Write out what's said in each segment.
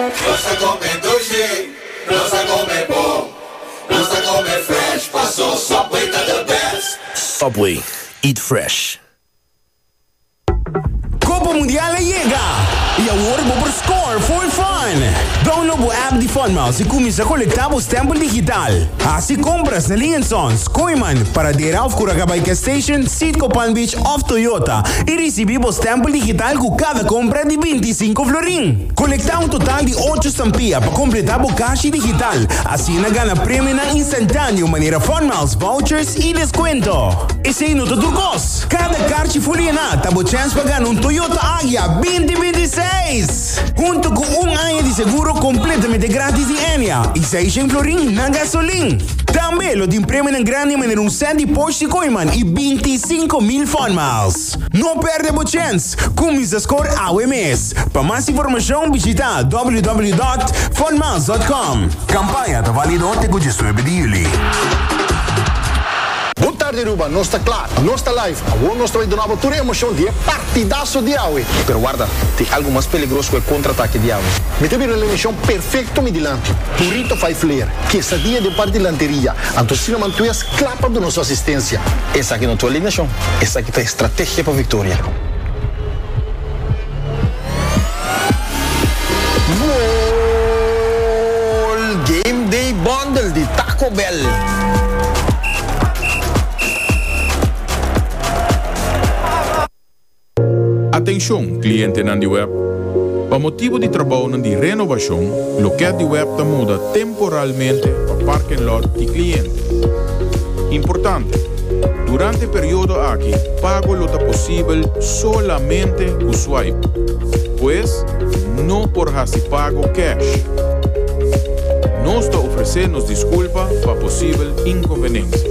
Nos ta come dulce, nos ta come bon, nos ta come fresh, paso Subway ta the best. Subway, eat fresh. Copa Mundial a yega, y awor bo por score full fun! Download bo app di Funmouse y cuminsa colecta bo stempel digital. Haci compras na Ling and Sons, Koeiman, Paradera of Curaca by Gas Station, Citgo Palm Beach of Toyota y ricibi bo stempel digital cu cada compra di binti i sinku florin. Konektá un total di ocho stampia pa kompletá bo kashi digital, asina gana premionan instantáneo manera funmiles, vouchers i deskuento. Esei no ta tur kos! Kada karchi ful yená ta bo chèns pa gana un Toyota Agya binti binti i seis, huntu ku un aña di seguro kompletamente grátis di Enya i seis shen florin na gasolin. Tambe lo tin premionan grandi manera un sèt di Porsche di Koyman i binti i sinku mil funmiles. No perde bo chens! Cuminsa scor awe mes! Pa mas informacion bishita www.funmiles.com. Campaña ta valido te cu diesnuebe di juli. Bon tarde Aruba, nos ta kla, nos ta live. Awor nos ta bai duna bo tur e emocion di e partidaso di awe. Pero warda, tin algo mas peligros cu e contraatake di awe. Mi ta bira un alineacion perfecto mi dilanti. Burrito fai flair, quesadia den par dilanteria, anto Sinaman Tues, Kla pa duna su asistensia. Esaki no ta un alineashon, esaki ta estrategia pa viktoria. Goal! Game Day Bundle di Taco Bell. Atenshon, klientenan di web! Pa motibu di trabounan di renobashon, lokèt di web ta muda temporalmente pa parken lòt di kliente. Importante, Durante e periodo aki, pago lo ta posibel solamente ku swipe. Pues, no por hasi pago cash. Nos ta ofresé nos diskulpa pa posibel inkonvenensia.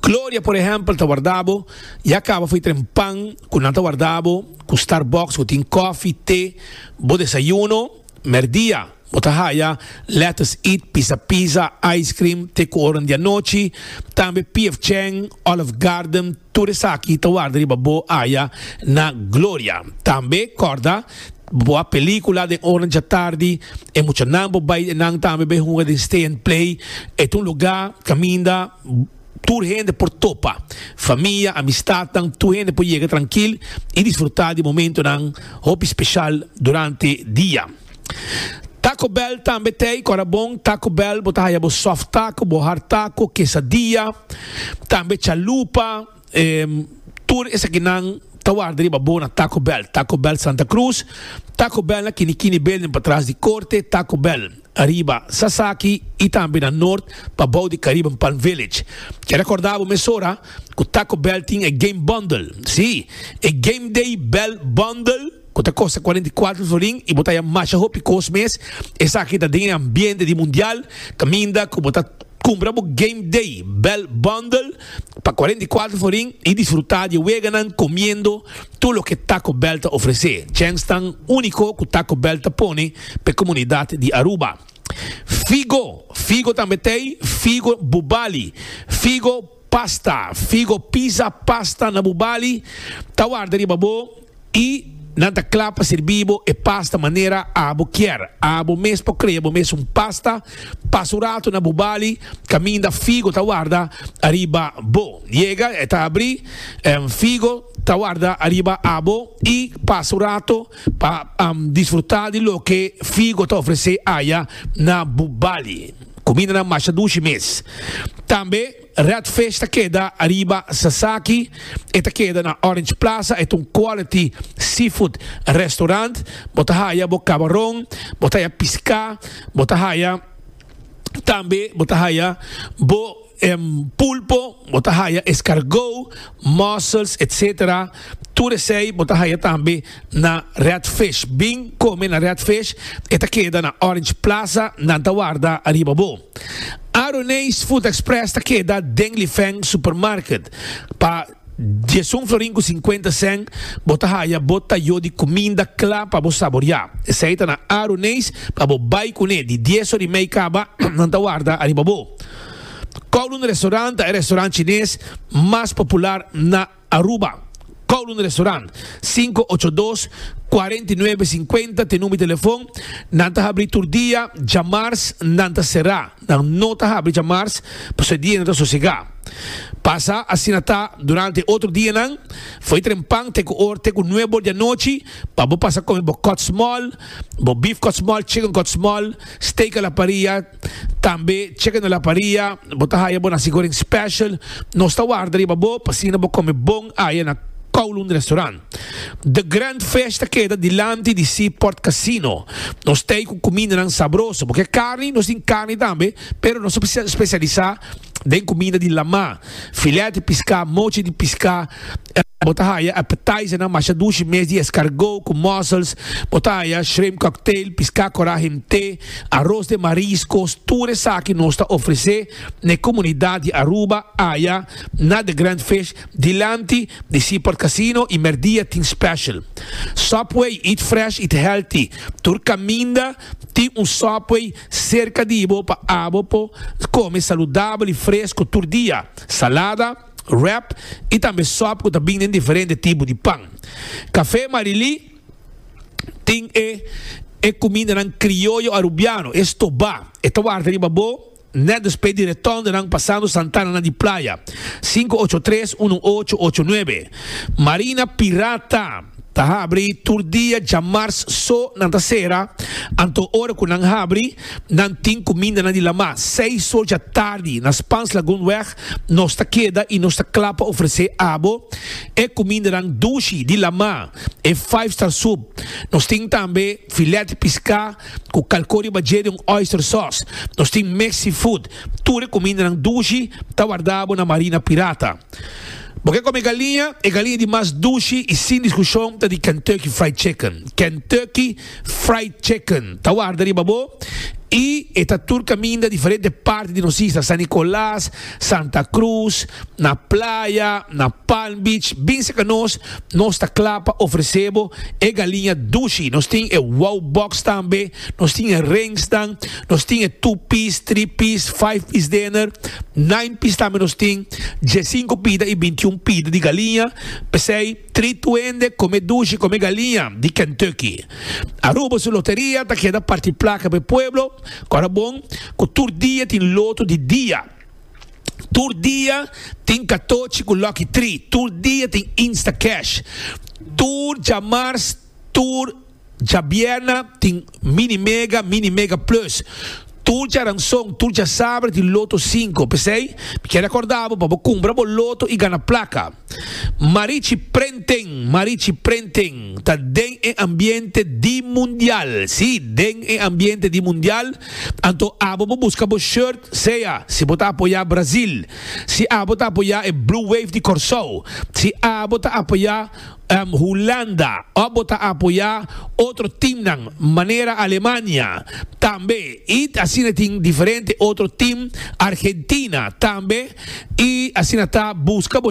Gloria por ehempel ta warda bo y a caba fo'i tren pan cu nan ta warda bo cu Starbucks cu tin cofi, te, bo desayuno. Merdia bo ta haya lettuce eat, pisa pizza, ice cream, te cu oro n'dianochi. Tambe PF Chang, Olive Garden, tur esaki ta warda riba bo aya na Gloria. Tambe corda bo a pelicula den ora n'djatardi, e muchanan bo bay den nan tambe bay hunga den Stay and Play. E ta un lugar caminda. Tur hende por topa, famia, amistadnan, tur hende por yega trankil i disfrutá di momentonan hopi speshal durante dia. Taco Bell tambe t'ei kòrda bon. Taco Bell bo ta haya bo soft taco, bo hard taco, kesadia, tambe chalupa. Tur esakinan ta warda riba bona Taco Bell, Taco Bell Santa Cruz, Taco Bell na Kini Kini Building patras di Korte, Taco Bell ariba Sasaki i tambe na Nort pa bou di Caribbean Palm Village. Ke rekorda bo mesora ku Taco Bell tin e Game Bundle, si, e Game Day Bell Bundle. cu ta costa cuarenta y cuatro florin y bo ta haya masha hopi cos mes, esaki ta den e ambiente di Mundial, caminda cu bo ta cumpra bo Game Day Bell Bundle pa cuarenta y cuatro florin y disfruta di e weganan comiendo tur loke Taco Bell ta ofrece, djenks tan unico cu Taco Bell ta pone pa e comunidad di Aruba. Figo, figo tambe t'ey, figo bubali, figo pasta, figo pizza pasta na bubali ta warda riba bo. I nan ta kla pa sirbi bo e pasta manera abo kier. Abo mes por krea bo mes un pasta. Pasa un ratu na bo bali kaminda figo ta warda ariba bo. Yega e ta abri, em, figo ta warda ariba abo i pasa un ratu pa, em, disfruta di loke figo ta ofrese aya na bo bali. Kumindanan masha dushi mes tambe. Red Fish ta keda ariba Sasaki, e ta keda na Orange Plaza, e ta un quality seafood restaurant, bo ta haya bo cabaron, bo ta haya pisca, bo ta haya tambe bo ta haya bo pulpo, bo ta haya escargot, mussels etc. Tur esey bo ta haya tambe na Red Fish, bin come na Red Fish, e ta keda na Orange Plaza, nan ta warda ariba bo. Aroneis Food Express ta keda den Lifeng Supermarket. Pa diesun florin ku sinkuenta sèn bo ta haya bo tayó di kuminda kla pa bo saboriá. Esei ta na Aroneis pa bo bai kuné. Di dies or i mei kaba, nan ta warda ariba bo. Kowloon Restaurant ta e restaurant chines mas popular na. Aruba, Kowloon Restaurant, sinku ocho dos, kuarenta i nuebe, sinkuenta t'e number di telefon, nan ta habri tur dia, djamars nan ta será, nan no ta habri djamars pasobra e dia nan ta sosegá. Pasa asina ta durante e otro dianan, fo'i trempan te ku or te ku nuebe or di anochi pa bo pasa kome bo kòtsmòl, bo beef kòtsmòl, chicken kòtsmòl, steak a la parrilla, Tambe cheque na la paria, bo ta haya bo na sigoring special, nos ta warda riba bo pa asina bo come bon aya na Kowloon Restaurant. The Grand Fish ta keda dilanti di Seaport Casino. Nos t'ey cu cumindanan sabroso, bo ke carni, nos tin carni tambe, pero nos ta specialisa den comida di lama, filet di pisca, mochi di pisca, bo ta haya appetizernan masha dushi mes di escargot cu mussels, bo ta haya shrimp cocktail, pisca cora himte, aros den mariscos, tur esaki nos ta ofrece n'e comunidad di Aruba aya na The Grand Fish dilanti di Seaport Casino y merdia tin special Subway, eat fresh, eat healthy, tur caminda tin un Subway. Serka di bo pa abo po kome saludabel i fresku tur dia, salada, wrap i tambe sòp ku ta bin den diferente tipo di pan. Kafé Marilí tin e e kumindanan krioyo arubiano, e stobá, e ta warda riba bo nèt despues di retondenan pasando santananan di playa, sinku ocho tres uno ocho ocho nuebe. Marina Pirata. Ta habri tur dia djamars so nan ta sera, anto ora cu nan habri nan tin cu minda nan di lama. Seis or dja tardi na Spans Lagoon weg nos ta keda y nos ta cla pa ofrece abo e cumindanan dushi di lama, e five star soup. Nos tin tambe filet pisca cu calco riba dje den oyster sauce. Nos tin Mexi food. Tur e cumindanan dushi ta wardabo na Marina Pirata. Bo ke kome galiña? E galiña di mas dushi i sin diskushon ta di Kentucky Fried Chicken. Kentucky Fried Chicken ta warda riba bo i e ta tur kaminda diferente parti di nos isla, San Nicolas, Santa Cruz, na playa, na Palm Beach, bin serka nos. Nos ta kla pa ofrese bo e galiña dushi. Nos tin e Wow Box tambe. Nos tin e rengsnan, nos tin e two piece, three piece, five piece dener, nine piece tambe nos tin, diesinco pida y bintiun pida di galiña, p'esey three tuende come dushi come galiña di Kentucky. Aruba su loteria ta keda parti placa p'e pueblo, cu ora bon cu tur dia tin loto di dia, tur dia tin catochi cu lucky three, tur dia tin instacash, tur djamars, tur. Djabièrna tin Mini Mega, Mini Mega Plus. Tur djaranson, tur djasaber di Loto Sinku. P'esei, mi kier rekòrda bo pa bo kumpra bo loto i gana plaka. Marichi Prenten, Marichi Prenten ta den e ambiente di mundial. Sí, den e ambiente di mundial. Anto abo bo buska bo short, sea si bo ta apoyá Brazil, si abo ta apoyá e Blue Wave di Kòrsou, si abo ta apoyá. Hulanda, òf bo ta apoyá otro timnan manera Alemania, tambe i asina tin diferente otro tim, Argentina tambe, i asina ta, buska bo.